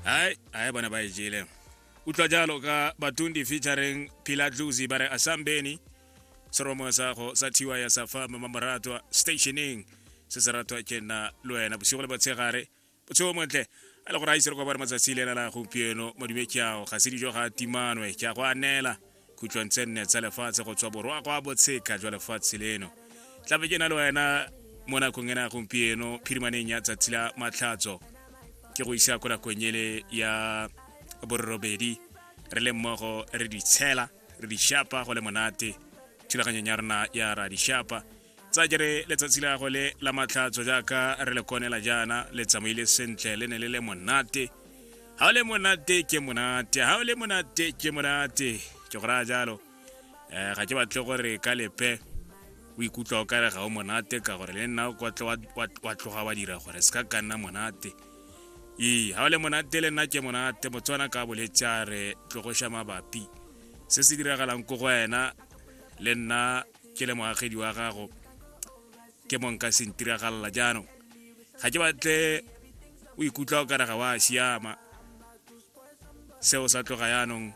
hai hai bona ba e jele utlwa jalo ka batundi featuring pila dluzi ba re asambeni seromo sa go sa thiwa ya sa fa mama moratwa stationing se se ratwa ke nna le wena bosigo le botshegare botshego montle a le gore a ise re kwa bare matsatsi le ena la gompieno modume ke ao ga se dijo ga timanwe ke a go anela khutlong tse nne tsa lefatshe go tswa borwa go a botsheka jwa lefatshe leno tlabe ke na le wena mo nakong ena gompieno phirimaneng ya tsatsi la matlhatso ke go isa ko nakong ele ya borobedi re le mmogo re di tshela re di shapa go le monate thulaganyong ya rona ya ra di shapa tsa jere letsatsi la gagwe le la matlhatso jaaka re le konela jaana le tsamaile sentle le ne le le monate ga o le monate ke monate ga o le monate ke monate ke go raya jalo um ga ke batle gore ka lepe o ikutlwa o kare ga o monate ka gore le nna wa tloga wa dira gore se ka ka nna monate ee ga o le monate le nna ke monate motswana ka boletse a re tlogoša mabapi se se diragalang ko go wena le nna ke le moagedi wa gago ke monka sentiragalela jaanong ga ke batle o ikutlwa o kare ga wa siama seo sa tloga yaanong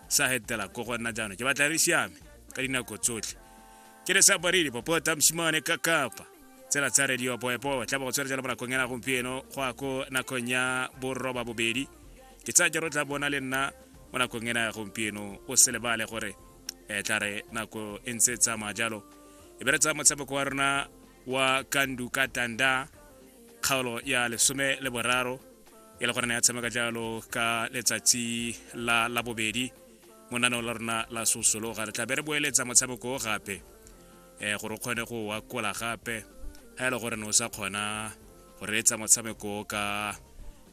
sa hetela ko go nna jaanong ke batla re siame ka dinako tsotlhe ke le sa baredi popota mosimane ka kapa tsela tsa radio boepo tla bo tswela jalo mo nakong ena gompieno go a ko nakong ya borroba bobedi ke tsaya jalo tla bona le nna mo nakong ena ya gompieno o se lebale gore e tla re nako e ntse e tsamaya jalo e be re tsaya motshameko wa rona wa kandu ka tanda kgaolo ya lesome le boraro e le gorena ya tshameka jalo ka letsatsi la labobedi mo naneo la rona la sosologa re tla be re boeletsa motshameko o gape um gore o kgone go wakola gape ga e le gore ne o sa kgona go reetsa motshameko ka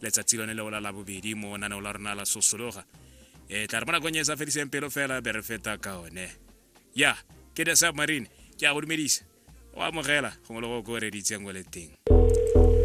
letsatsi lone leo la labobedi mo naneo la rona la sosologa e tla re mo nakong e sa fediseng pelo fela be re feta ka one ya ke the submarine ke a go dumedisa o amogela gongwe le go ko reditseng o le teng